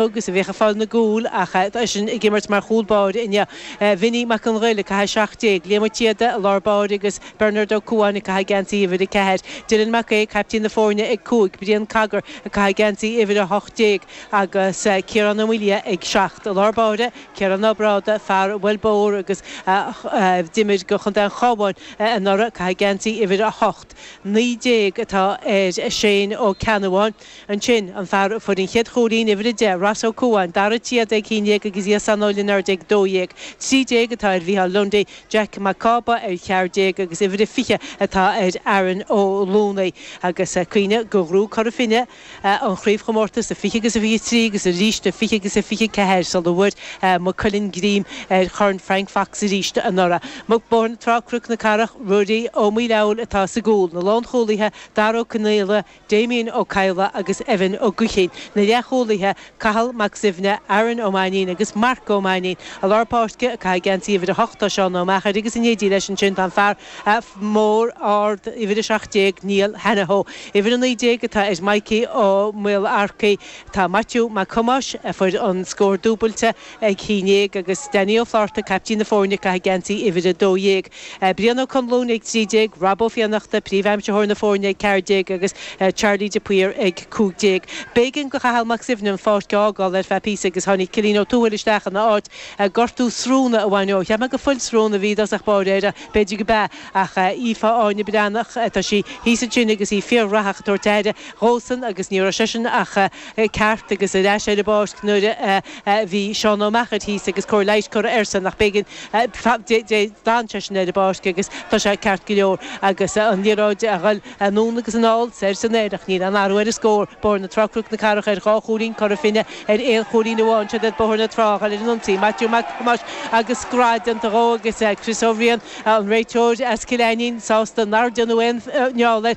agus a bheadh ag fáil na gcúl ach eisean ag imirt mar chúl báire inniu. Vinny Mac an Ghaill ag caitheamh 17, Liam Ó Síoda i lár báire agus Bernard Ó Cuáin ag caitheamh geansaí uimhir 4, Dylan Mac Aoidh, caiptín na foirne ag 5, Brian Cogger ag caitheamh geansaí uimhir 18 agus Ciarán Ó Maoildhia ag 7. I lár báire, Ciarán Ó Brádaigh, fear a bhuail bóthar agus a d'imir do chontae an Chábháin anuraidh, ag caitheamh geansaí uimhir 8. 19 atá ar Shane Ó Ceannabháin. Ansin, an fear a fuair an chéad chúilín, uimhir 10, Ross Ó Cuáin, Dara Ó Síoda ag haon déag agus Jason Ó Lionáird ag dó dhéag. Trí déag atá ar Mhícheál Lundy, Jack Mac Cába ar cheathair déag agus uimhir a fiche atá ar Aaron Ó Lúnaí. Agus cuimhnigh gur ghnóthaigh Cora Finne an chraobhchomórtas a fiche agus a fiche trí agus arís a fiche agus a fiche ceathair sula bhfuair Maigh Cuilinn greim ar Chorn Frank Fox arís anuraidh. Maidir le Bóthar na Trá-Cnoc na Cathrach, Ruairí Ó Maolfabhail atá sa gcúl, na lánchúlaithe, Dara Ó Conaola, Damien Ó Cadhla agus Evan Ó Gaoithín, na leathchúlaithe, Cathal Mac Suibhne, Aaron Ó Mainnín agus Marc Ó Mainnín, i lár páirce, ag caitheamh geansaí uimhir a hocht, tá Seán Ó Meachair agus in éindí leis ansin tá an fear mór, ard, uimhir a seacht déag, Niall Hanahoe. Uimhir a naoi déag atá ar Mikey Ó Maolarcaigh. Tá Maitiú Mac Thomáis, a fuair an scór dúbailte, ag haon déag agus Danny Ó Flátharta, caiptín na foirne, ag caitheamh geansaí uimhir a dó dhéag. Brian Ó Conluain, ag 13, Rob Ó Fiannachta, Príomhaimsitheoir na Foirne, ag ceathair déag, agus Charlie de Paor, ag cúig déag. B'éigean do Chathal Mac Suibhne an pháirc a fhágáil ar feadh píosa agus tháinig Cilín Ó Tuathail isteach ina áit, gortú sróine a bhain dó. Cheap mé gur fuil sróine a bhí i dtosach báire air, b'fhéidir gurb ea, ach Aoife Áine Breathnach, tá sí thíos ansin agus í fíorghraitheach ag tabhairt aire dhósan agus ní raibh seisean ach ceart agus ar ais ar an bpáirc nuair a bhí Seán Ó Meachair thíos agus cóir leighis curtha airsean ach b'éigean D'fhan seisean ar an bpáirc agus tá sé ceart go leor agus an liathróid a dhul anonn agus anall, soir is anoir ach níl aon athrú ar an scór. Bóthar na Trá-Cnoc na Cathrach ar dhá chúilín, Cora Finne ar aon chúilín amháin. Siod iad Bóthar na Trá a dhul ar an ionsaí, Maitiú Mac Thomáis agus grá déanta dhó agus Chris Ó Riain, an réiteoir as Cill Ainnín, sásta nár déanadh aon fheall air.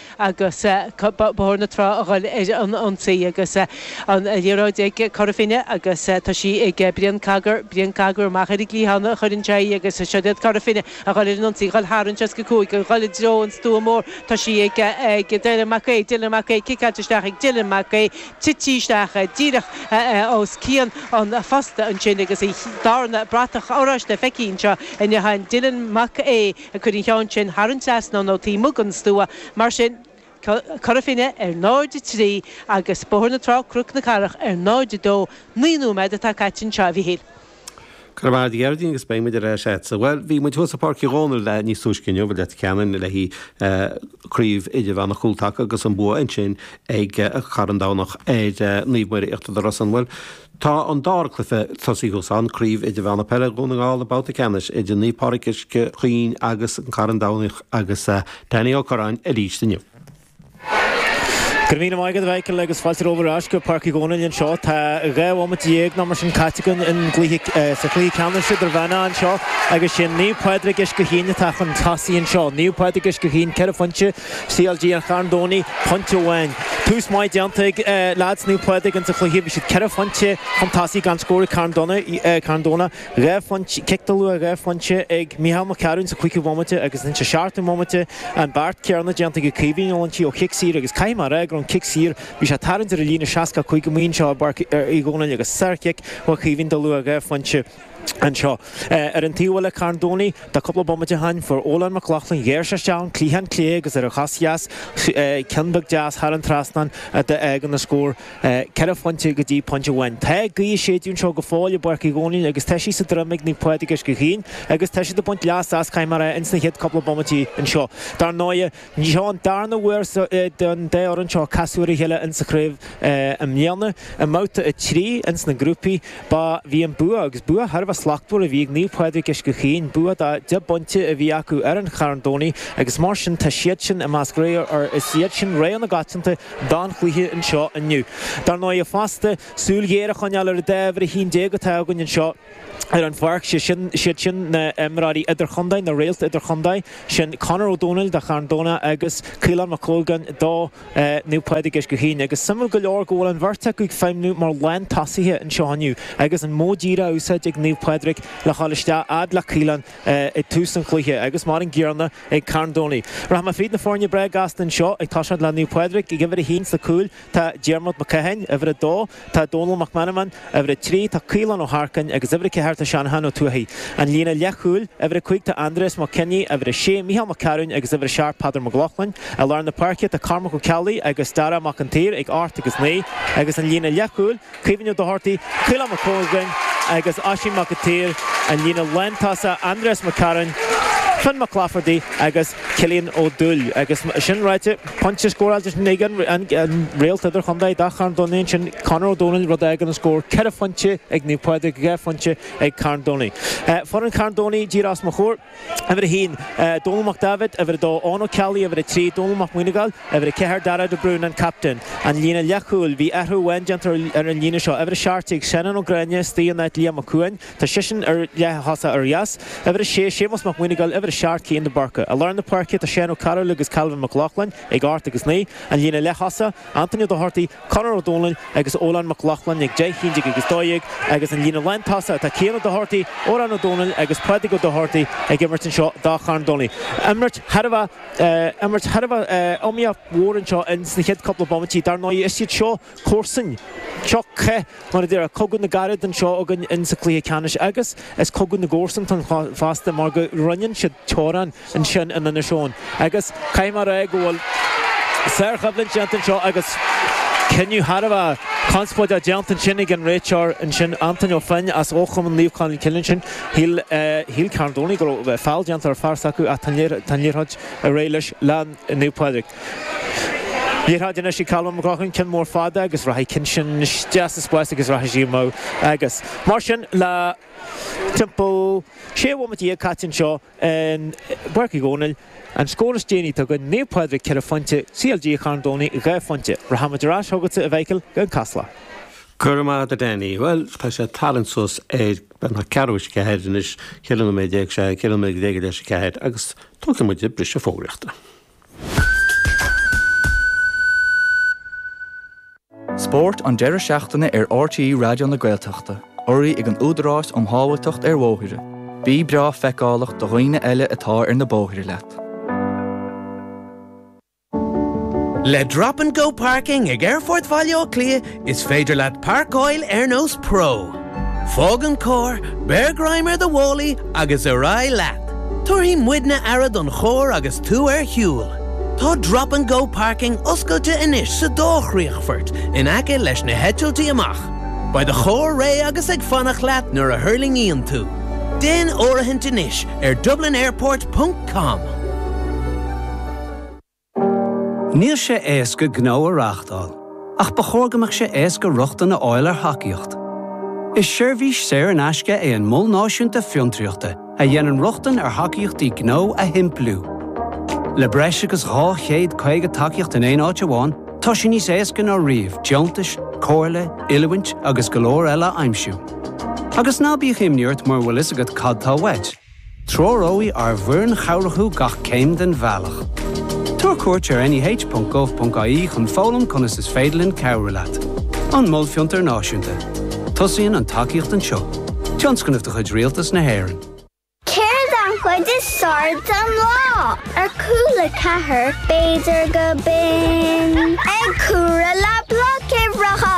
agus Bóthar na Trá a dhul ar an ionsaí agus an liathróid ag Cora Finne agus tá sí ag Brian Cogar, Brian Cogar amach ar an gcliathán a chuireann sé í agus seo iad Cora Finne a dhul ar an ionsaí, a dhul thar an 65, a dhul i dtreo an stua mór, tá sí ag Dylan Mac Aoidh, Dylan Mac Aoidh, ciceáilte isteach ag Dylan Mac Aoidh, titim isteach díreach os cionn an phosta ansin agus an darna bratach oráiste feicthe anseo i ndotháin Dylan Mac Aoidh. Ag cur an cheann sin thar an trasnán ó taobh amuigh den stua, mar sin, Cora Finne ar 0, 3, agus Bóthar na Trá, Cnoc na Cathrach ar 0, 2. Naoi nóiméad atá caite anseo, a Mhichíl. Go raibh maith agat, a Ghearóidín agus beidh muid ar ais agatsa. Bhuel, bhí muid thuas i bPáirc Uí Dhónaill níos túisce inniu i Leitir Ceanainn, le haghaidh Craobh Idirmheánach Chúltaca agus an bua ansin ag Carn Domhnach ar Naomh Muire Íochtar na Rosann. Bhuel. Tá an dara cluiche tosaithe ó shin, Craobh Idirmheánach Peile Dhún na nGall, babhta ceannais idir Naomh Pádraig Uisce Chaoin agus An Carn Domhnaigh agus Danny Ó Corráin arís dúinn. Go raibh míle maith agat a Mhichael agus fáilte romhat ar ais go Páirc Uí Dhónaill anseo. Tá dhá bhomaite dhéag nó mar sin caite againn in gcluiche, sa chluiche ceannais idirmheánach anseo agus is iad Naomh Pádraig Uisce Chaoin atá chun tosaigh anseo. Naomh Pádraig Uisce Chaoin ceithre phointe CLG an Chairn Domhnaigh pointe amháin. Tús maith déanta ag leaids Naomh Pádraig ins an chluiche, bhí siad ceithre phointe chun tosaigh gan scór ag Carn Domhnach, Carn Domhnach, dhá phointe, cic de luach dhá phointe ag Micheál Mac Cearuinn sa chúigiú bomaite agus sa seachtú bomaite an beart céarna déanta ag Caoimhín Ó Loinsigh ó chic saor agus caithfidh mé a rá go raibh an cic saor bhí sé tarraingt ar an líne 65 méadar anseo i bPáirc Uí Dhónaill agus sár chic ó Chaoimhín de luach dhá phointe. anseo. Ar an taobh eile Carn Domhnaigh cúpla bomaite ó shin fuair Ólann Mac Lochlainn ghearr sé isteach an cliathán clé agus ar a chos dheas ceann beag deas thar an trasnán a d'fhág an scór ceithre phointe go dtí pointe amháin. Tá gaoth ag séideadh anseo go fóill i bPáirc Uí Dhónaill agus tá sí sa droim ag Naomh Pádraig Uisce Chaoin agus tá siad ag baint leas as. Caithfidh mé a rá ins na chéad cúpla bomaití anseo dar ndóigh. Ní, seo an darna huair don dá fhoireann seo casadh ar a chéile insa chraobh i mbliana. I mbabhta a trí ins na grúpaí, ba bhí an bua, agus bua thar a bheith slachtmhar, a bhí ag Naomh Pádraig Uisce Chaoin. Bua de dheich bpointe a bhí acu ar an Charn Domhnaigh, agus mar sin tá siadsan i measc rogha, ar Is iad sin rogha na coitianta don chluiche anseo inniu. Dar ndóighe fosta, súil ghéar a choinneáil ar an dá uimhir a haon déag atá againn anseo. ar an bpáirc, sé sin, siad sin na h-imreoirí idir-chontae, na réalt idir-chontae, sin Conor Ó Domhnaill do Charn Domhnaigh agus Caolán Mac Conagail do Naomh Pádraig Uisce Chaoin. Agus suimiúil go leor go bhfuil an bheirt acu ag feidhmniú mar lán tosaithe anseo inniu agus an modh díreach á úsáid ag Naomh Pádraig le dhul isteach fhad le Caolán ag tús an chluiche agus mar an gcéarna ag Carn Domhnaigh. Rachaimid fríd na foirne breá gasta anseo, ag toiseacht le Naomh Pádraig ag uimhir a haon sa cúl, Tá Diarmuid Mac Catháin, uimhir 2, tá Dónal Mac Meanmain, uimhir 3, tá Caolán Ó hEarcáin agus uimhir 4 tá Seanachán Ó Tuathaigh. An líne leathchúil, uimhir 5, tá Andreas Mac Cionnaith, uimhir 6, Micheál Mac Cearuin agus uimhir 7 Peadar Mag Lochlainn. I lár na páirce tá Cormac Ó Ceallaigh agus Darragh Mac an tSaoir ag ocht agus naoi agus an líne leathchúil, Caoimhín Ó Dochartaigh, Caolán Mac Conagail agus Oisín Mac a tSaoir, an líne lántosaigh Andreas McCarron, Fionn Mac Laifeartaigh agus Cillian Ó Dúill agus, sin ráite, pointe scóráilte ag an réalt idirchontae do Charn Domhnaigh ansin, Conor Ó Dónaill, rud a fhágann an scór ceithre phointe ag Naomh Pádraig, dhá phointe ag Carn Domhnaigh. Foireann Carn Domhnaigh díreach os mo chomhair. Uimhir a haon, Dónall Mac Daibhéid, Uimhir a dó, Eoin Ó Ceallaigh, Uimhir a trí, Dónall Mac Muineagáil, Uimhir a ceathair, Darragh de Brún, an captaen. An líne leathchúil, Bhí athrú amháin déanta ar an líne seo, uimhir a seacht déag, Seanán Ó Gráinne astoigh in áit Liam Mac Cuáin, tá seisean ar leathchúl ar dheas, uimhir a sé, Séamus Mac Muineagáil, uimhir a seacht, Cian de Búrca. I lár na páirce, tá Seán Ó Cearúill agus Calvin Mac Lochlainn ag ocht agus naoi. An líne leath-thosaigh, Antaine Ó Dochartaigh, Conor Ó Dónaill agus Odhrán Mac Lochlainn ag deich, a haon déag agus dó dhéag agus an líne lántosaithe atá Cian Ó Dochartaí, Odhrán Ó Dónaill agus Pádraig Ó Dochartaí ag imirt anseo do Charn Domhnaigh. Imirt thar a bheith, imirt thar a bheith iomaíoch mhór anseo in sna chéad cúpla bomaití. Dar ndóigh is iad seo comharsainteacha. Mar a déarfadh cogadh na gcarad anseo againn in sa cluiche ceannais agus is cogadh na gcomharsanachtan fosta mar go roinneann siad teorainn ansin in Inis Eoghain agus caithfidh mé a rá go bhfuil sárchoimhlint déanta anseo agus cinneadh thar a bheith conspóideach déanta ansin ag an réiteoir ansin Antaine Ó Floinn as fochumann Naomh Colm Cille ansin. Shíl, shíl Carn Domhnaigh go raibh feall déanta ar fear s'acu ach tá an liathróid réidh leis, le Naomh Pádraig. Liathróid anois ag Colm McLaughlin, an ceann mór fada agus rachaidh ceann sin isteach sa spás agus rachaidh sí amach. Agus mar sin le timpeall sé bhomaite dhéag caite anseo in bPáirc Uí Dhomhnaill, an scór is déanaí tá ag Naomh Pádraig ceithre phointe, CLG Charn Domhnaigh dhá phointe. Rachaimid ar ais chugatsa a Mhicheáil in Casla. Go raibh maith agat a Danny. Bhuel, tá sé ag tarraingt suas ar an ceathrú tar éis a ceathair anois, ceithre nóiméad déag, sea, ceithre nóiméad déag tar éis a ceathair agus tógfaidh muid briseadh fógraíochta. Spórt an deireadh seachtaine ar RTÉ Raidió na Gaeltachta, urraithe ag an Údarás um Shábháilteacht ar Bhóithre. Bí breá feiceálach do dhaoine eile atá ar na bóithre leat. Le Drop and Go Parking ag Aerfort Bhaile Átha Cliath, Is féidir leat pairceáil ar nós pro. Fág an carr, beir greim ar do mhálaí agus ar aghaidh leat. Tabharfaidh muidne aire don charr agus tú ar shiúl. Tá Drop and Go Parking oscailte anois sa dá chríochfort in aice leis na heitiltí amach. Beidh do charr réidh agus ag fanacht leat nuair a thuirlingíonn tú. Déan áirithint anois ar dublinairport.com. Níl sé éasca gnó a reáchtáil, ach ba chóir go mbeadh sé éasca rochtain a fháil ar thacaíocht. Is seirbhís saor in aisce é an Mol Náisiúnta Fiontraíochta a dhéanann rochtain ar thacaíochtaí gnó a shimpliú. Le breis agus 250 tacaíocht in aon áit amháin, tá sé níos éasca ná riamh deontais, comhairle, oiliúint agus go leor eile a aimsiú. Agus ná bíodh imní ort mura bhfuil fhios agat cad tá uait, Treoróidh ár bhfoireann chabhrach thú gach céim den bhealach. Tabhair cuairt ar neh.gov.ie chun foghlaim conas is féidir linn cabhrú leat. An Mol Fiontar Náisiúnta. Tosaíonn an tacaíocht anseo. Tionscnamh de chuid Rialtas na hÉireann. Céard an chuid is fearr den lá ar Cúla4? B'fhéidir gurb in ag comhaireamh le Bloic Uimhreacha.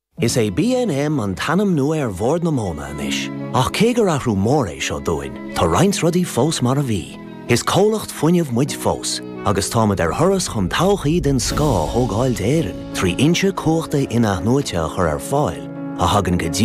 Is é BNM an t-ainm nua ar Bhord na Móna anois, ach cé gur athrú mór é seo dúinn, tá roinnt rudaí fós mar a bhí. Is comhlacht fuinnimh muid fós, agus táimid ar thuras chun todhchaí den scoth a thógáil d'Éirinn trí fhoinse cumhachta inathnuaite a chur ar fáil a thagann go